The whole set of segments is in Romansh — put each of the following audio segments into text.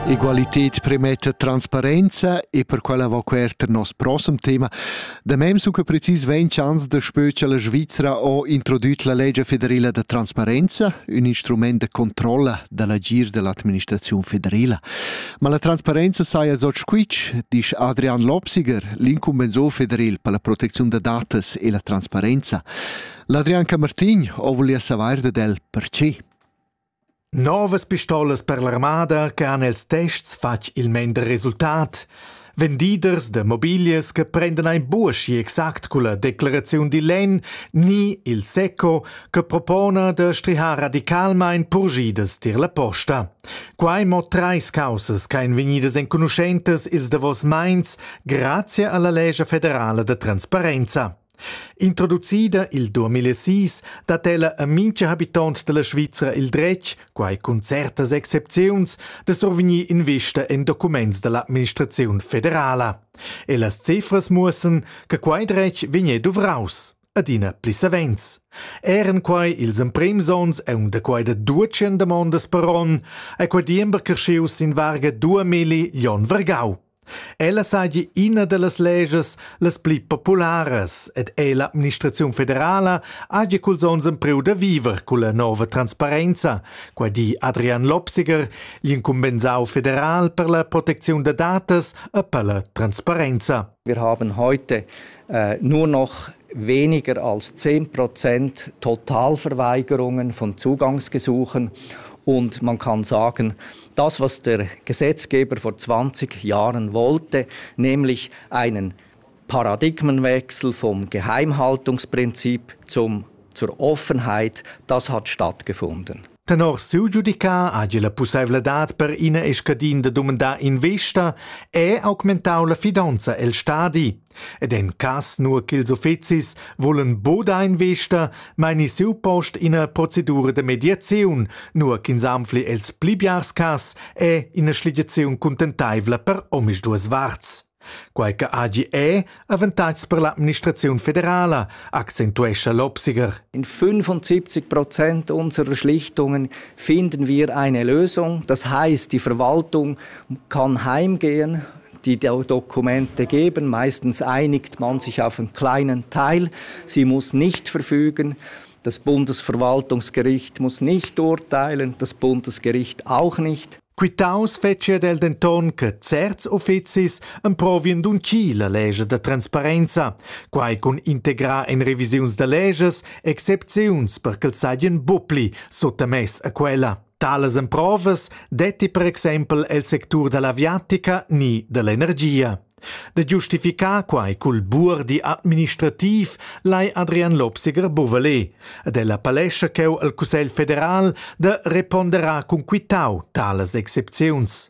Egualität premetta transparenza e per quella va quert nos prossem tema. Da mem sun que precis 20 ans da spö cha la Svizra ho introdüt la legge federela da transparenza, ün instrument de controlla da l'agir dell'administraziun federela. Ma la transparenza saja so squitsch, disch Adrian Lopsiger, l'incumbensor federel per la proteziun da datas e la transparenza. L'Adrian Camartin ho volia savair dad el perche. Novas pistolas per l'armada che han els tests fatg il mender resultat, vendiders da mobiglias che prendan ein buoschi exact culla declaraziun digl lenn ni il SECO che propona da strihar radicalmein purgidas tier la posta. Quei mo treis caussas che ein vegnidas enconuschentas ils davos meins grazie alla legge federala da transparenza. Introducida il 2006 dat ella a mintga habitont dalla Svizra il dretg, quai cun certas excepziuns, da survegnir investa en documents dall'administraziun federala. E las cifras muossan che quei dretg vegnè duvraus adina pli savens. Eran quai ils emprims onns aunc da quai da 200 damondas per onn, è quei diember creschius sin varga 2000 lion vergau. Ella saja ina da las legias las pli popularas ed è l'administraziun federala haja culs onns empriu da viver culla nova transparenza. Quai di Adrian Lopsiger, l'incumbensau federal per la protecziun da datas e per la transparenza. Wir haben heute äh, nur noch weniger als 10 Prozent Totalverweigerungen von Zugangsgesuchen und man kann sagen, das, was der Gesetzgeber vor 20 Jahren wollte, nämlich einen Paradigmenwechsel vom Geheimhaltungsprinzip zum, zur Offenheit, das hat stattgefunden. Tenor siu giudicar hagi la pusseivladad per ina e scadin da dumandar investa e augmentau la fidonza el stadi. Ed en cass nur ch'ils uffezis volan boda investa, meini siu post ina procedura de mediaziun, nur ch'ins anfli els pli biars cass è ina schligiaziun cuntenteivla per omisduas varts. Quei che hagi è avantatgs per l'administraziun federala, accentuescha l'Obsiger. In 75 Prozent unserer Schlichtungen finden wir eine Lösung. Das heißt, die Verwaltung kann heimgehen, Die Dokumente geben, meistens einigt man sich auf einen kleinen Teil, sie muss nicht verfügen, das Bundesverwaltungsgericht muss nicht urteilen, das Bundesgericht auch nicht. Quitaus fetschia del denton che certs ufficis emprovien d'uncir legge da transparenza, quai cun integrar en revisiuns da leges excepziuns per ch'els saien bupli suttamess a quella. Talas emprovas detti per exempel el sectur dall'aviatica ni dall'energia. Da giustificar quai cul buordi administrativ lai Adrian Lobsiger Bovalet ed el appellescha cheu al Cussegl federal da reponderar cun quitau talas excepziuns.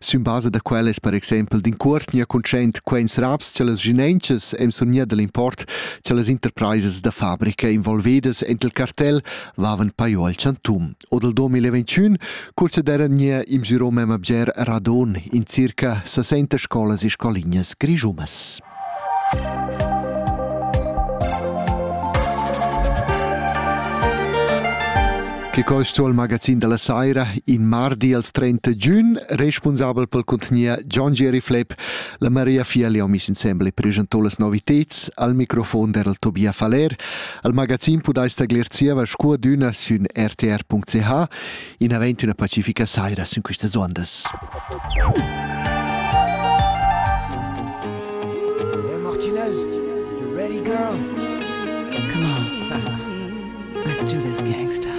Sün basa da quella es per exaimpel d'incuortgna cuntschaint quaints raps cha las ginenchas e'm sun gnir da l'import cha las interpraisas da fabrica involvedas ent il cartel vavan pajo al chantun. O dal 2021, cuorsa d'eira gnir imgirò memma bger radon in circa 60 scolas e scolignas grischunas. Che quel sto il magazin della saira in mardi als 30 giugn, responsabel pel contgnia John Jerry Flepp, la Maria Fiali ho mis insembel e presentò las noviteds al microfon der Tobia Faller, al magazin podais taglir zieva scuadüna sün rtr.ch inavent üna pacifica saira sün questas ondas. Hey Martinez, you ready girl? Come on. Let's do this, gangsta.